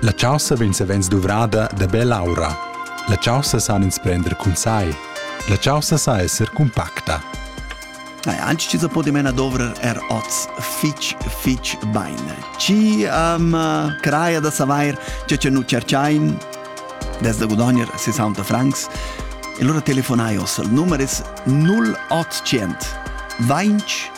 La chaussa vegn savens duvrada da bell'aura. La chaussa san ins prender cun sai. La chaussa sa esser cumpacta. Dai, anci ci se poti mena dovrer er oz fitch, fitch bain. Ci am uh, craia da savair che ce nu cerciain desde gudogner 60 francs. E allora telefonai os al numeris 0800 20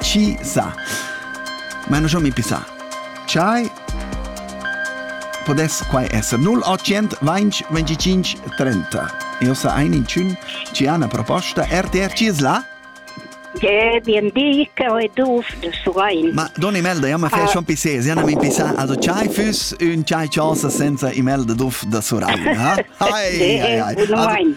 Chi sa? Ma non mi pisa. Ciai. Podes quai esser 0800 20 25 30. Io sa ein in cun ci ha una proposta RTR ci es là? Eh, bien di, che ho duf de Surein. Ma don email da jamma fai schon pisse, si hanno mi pissa, also chai füss un chai chasa senza email de duf da Surein, ha? Hai, hai, hai.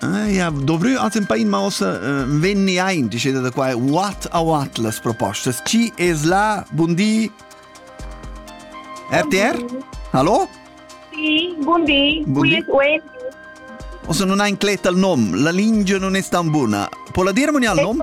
Eh, ja, dovrü als un pain mausa uh, venni aint, diceda da qua, what a what las propostas. Ci es la, bundi? RTR? Hallo? Sì, buondì, buondì. qui es Wendy. O se non hai incletta il nome, la lingia non è tan buona. Può la dire al nome?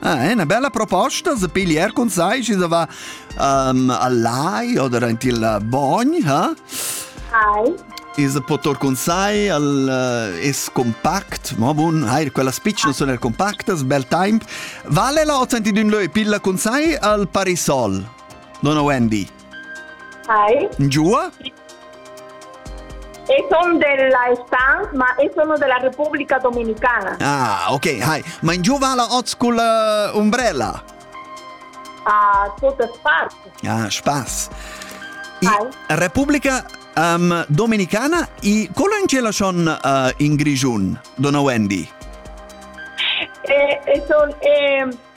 Ah, è una bella proposta se pigliar con sai si da va um, a lai o da il bogn, ha? Ai. E se potor con sai al uh, es compact, ma bun, hai quella spicch non sono compactas, bel temp. Vale la ottenti d'un leu pilla con sai al parisol. Non ho Andy. Ai. Giua? E sono della Stan, ma e sono della Repubblica Dominicana. Ah, ok, hi. Mein giù va la oz col uh, umbrella? Ah, totes parts. Ah, spaß. I, Repubblica um, Dominicana i colon ce la son uh, in Grigiun, dona Wendy? E, e son, e,